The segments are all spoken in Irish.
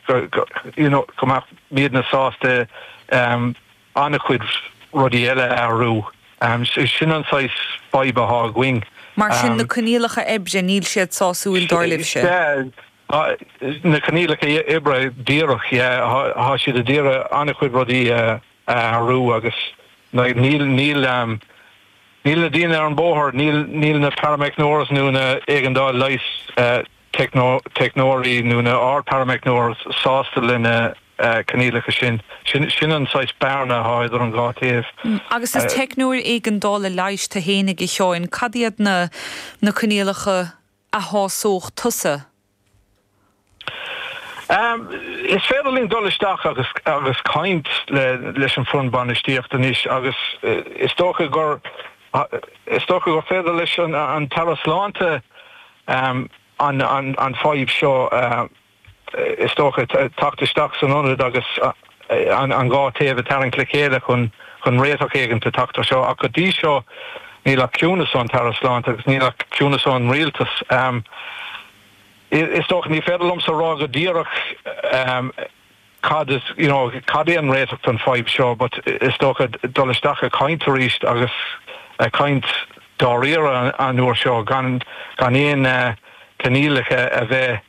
go, go, you know, go mbeadh, mbeadh muidne sásta em an-chuid rudaí eile a athrú. Em so sin an saghas fadhb atá againn. Mar sin, na Em. coinníollacha oibre, níl siad sásúil dar libhse? Sea, tá, na coinníollacha oibre díreach, yeah, tá, tá siad a d'iarraidh an-chuid rudaí a athrú agus like níl, níl em, níl na daoine ar an bhóthar, níl, níl na parameicneoirs nó na éigeandáil leighis eh, teicneoirí nó na, ár, parameicneoir sásta le na coinníollacha sin. Sin, sin an saghas bearna atá idir an dhá taobh. Agus is teicneoir éigeandála leighis tú fhéinig, a Sheáin, cad iad na, na coinníollacha a shásódh tusa? Is féidir linn dul isteach agus, agus caint le, leis an foireann bainistíochta anois agus is dócha gur, is dócha gur féidir leis an, an tAire Sláinte, an fadhb seo, is dócha, teacht isteach san ionad agus an dhá taobh a tharraingt le chéile chun réiteach éigin a theacht ar seo. Ach go dtí seo, níl ach ciúnas ón tAire Sláinte agus níl ach ciúnas ón Rialtas. Is dócha, ní féidir liomsa a rá go díreach, cad is, you know, cad é an réiteach don fadhb seo but is dócha dul isteach a' caint aríst agus a' caint dáiríre an uair seo gan, gan aon eh, coinníollacha a bheith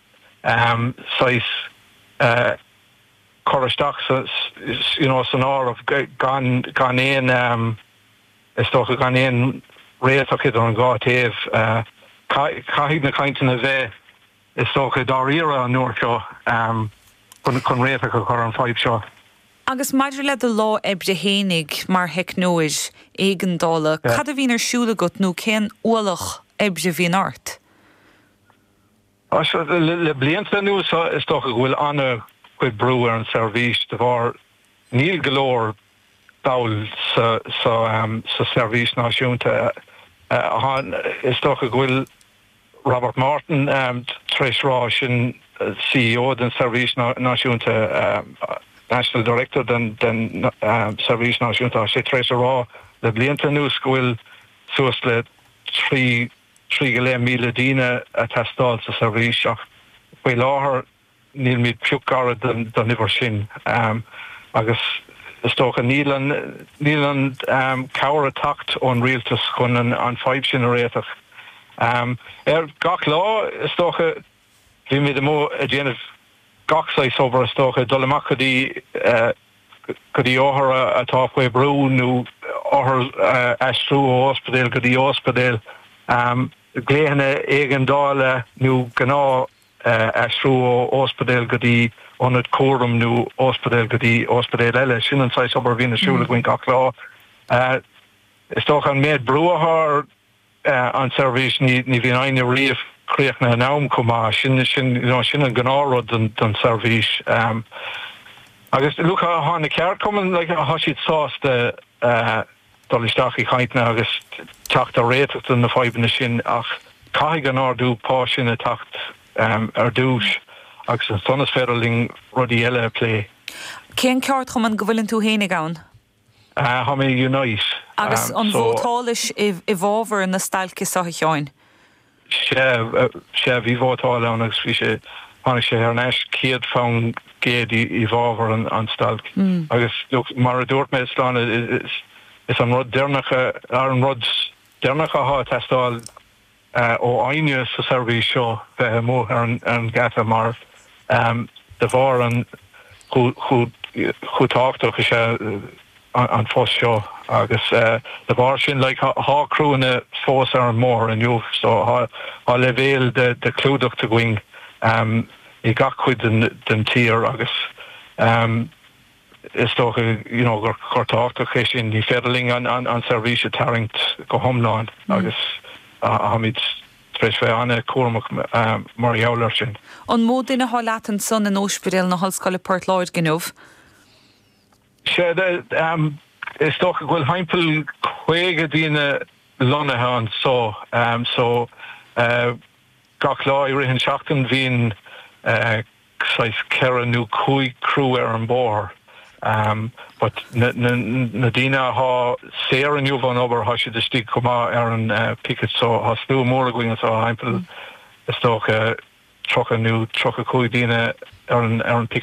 ehm saghas eh cur isteach sa, sa you know, san áireamh gan, gan aon ehm, is dócha gan aon réiteach don dá taobh eh, caithfidh na cainteanna bheith. Is dócha, dáiríre, an uair seo, chun réiteach a chur ar an fadhb seo. Agus maidir le do lá oibre fhéinig mar theicneoir éigeandála, cad a bhíonn ar siúl agat nó cén ualach oibre a bhíonn ort? Le blianta anuas, is dócha go bhfuil an-chuid brú ar an seirbhís de bharr níl go leor ball sa seirbhís náisiúnta. Is dócha go bhfuil Robert Morton, tar éis a rá sin C.E.O. den Seirbhís Náisiúnta national director den Seirbhís Náisiúnta tá sé tar éis a rá le blianta anuas go bhfuil suas le trí trí go leith míle daoine a teastáil sa Seirbhís ach faoi láthair níl muid pioc gairid don uimhir sin agus is dócha níl an cabhair ag teacht ón rialtas chun an fadhb sin a réiteach. Gach lá is dócha bíonn muid amuigh ag déanamh gach saghas obair is dócha, dul amach go dtí othair atá faoi bhrú nó othair a aistriú ó ospidéal go dtí ospidéal, glaochanna éigeandála nó gnáth aistriú ó óspidéal go dtí ionad cúraim nó óspidéal go dtí óspidéal eile. Sin an saghas obair a bhíonn ar siúl againn gach lá. Is dócha an méid brú athá ar an tseirbhís ní bhíonn éinne riamh críochnaithe in am chomh maith. Sin, sin, you know, sin an gnáth rud don, don tseirbhís. Agus look, thá na ceardchumainn, like, thá siad sásta, dul isteach i cainteanna agus teacht ar réiteach do na fadhbanna sin ach caithfidh an ardú pá sin a theacht ar dtús agus ansan is féidir linn rudaí eile a phlé. Cén ceardchumann go bhfuileann tú féinig ann? Tá mé i Unite. Agus an vótáilis i bhfábhar na stailce seo, a Sheáin? Sea, sea, bhí vótáil ann agus bhí sé, tháinig sé thar n-ais céad fán gcéad i bhfábhar an stailc agus mar a dúirt mé, seo é an rud deireanach, an rud deireanach athá ag teastáil ó éinne sa seirbhís seo bheith amuigh ar an gheata mar de bharr an, chomh tábhachtach is athá an phost seo agus de bharr sin like thá criúnna fós ar an mbóthar inniu so thá leibhéal de chlúdach againn i gach cuid den tír agus is dócha you know gur rud tábhachtach é sin. Ní féidir linn an seirbhís a tarraingt go hiomlán agus táimid tar éis bheith ana cúramach mar gheall air sin. An mó duine thá leat ansan in Óispidéal na hOllscoile Port Láirge inniu? Sea, is dócha go bhfuil thimpeall caoga daoine lonnaithe anso so gach lá i rith an tseachtain bhíonn saghas ceithre nó cúig criú ar an mbóthar but na daoine athá saor inniu ón obair athá siad istigh chomh maith ar an picket so athá slua mór againn anso, thimpeall is dócha tríocha nó tríocha cúig daoine ar an picket.